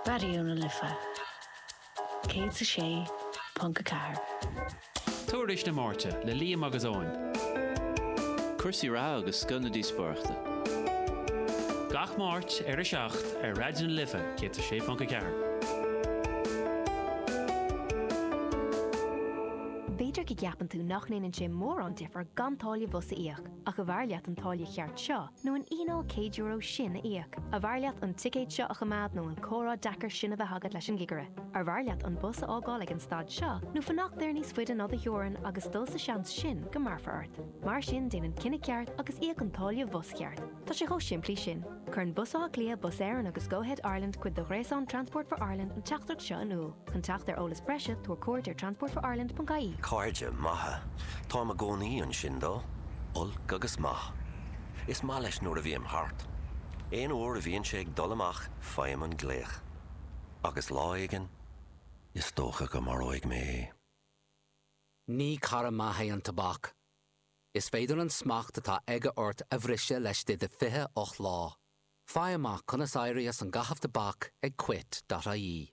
Raidió na Life 106.4. Tuairisc na Máirte le Liam agus Eoin. Cúrsaí reatha agus scoth na díospóireachta. Gach Máirt ar 7 ar Raidió na Life 106.4. B'fhéidir go gceapann tú nach ndéanann sé mórán difear gan táille bhus a íoc. Ach ab fhearr leat an táille cheart seo nó an fhíneáil céad euro sin a íoc? Ab fhearr leat an ticéad seo a choimeád nó an comhrá deacair sin a bheith agat leis an gcigire? Ab fhearr leat an bus a fhágáil ag an stad seo nó fanacht air níos faide ná do theorainn agus dul sa seans sin go mbearfar ort? Mar sin déan an cinneadh ceart agus íoc an táille bhus cheart. Tá sé chomh simplí sin. Cuireann Bus Átha Cliath, Bus Éireann agus Go-Ahead Ireland cuid de ghréasán Transport for Ireland an teachtaireacht seo in iúl. Chun teacht ar eolas breise, tabhair cuairt ar transportforireland.ie. Cairde maithe. Táim i gcónaí ansin dó. Olc agus maith. Is maith leis nuair a bhím thart. Aon uair a bhíonn sé ag dul amach faighim an glaoch. Agus lá éigin, is dócha go maróidh mé é. Ní cara maith é an tobac. Is féidir an smacht atá aige ort a bhriseadh laistigh de 28 lá. Faigh amach conas éirí as an gcaitheamh tobac ag quit.ie.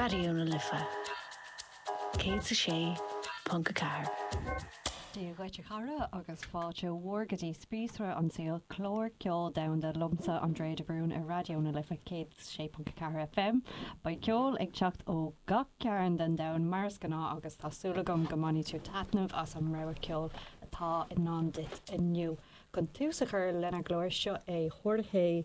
Raidió na Life 106.4. Dia dhuit a chara agus fáilte mhór go dtí Spíosra an tSaoil, clár ceoil domhanda liomsa Andrea de Brún ar Raidió na Life 106.4 FM. Beidh ceol ag teacht ó gach cearn den domhan mar is gnáth agus tá súil agam go mbainfidh tú taitneamh as an rogha ceoil atá i ndán duit inniu. Chun tús a chur lenár gclár seo é Jorge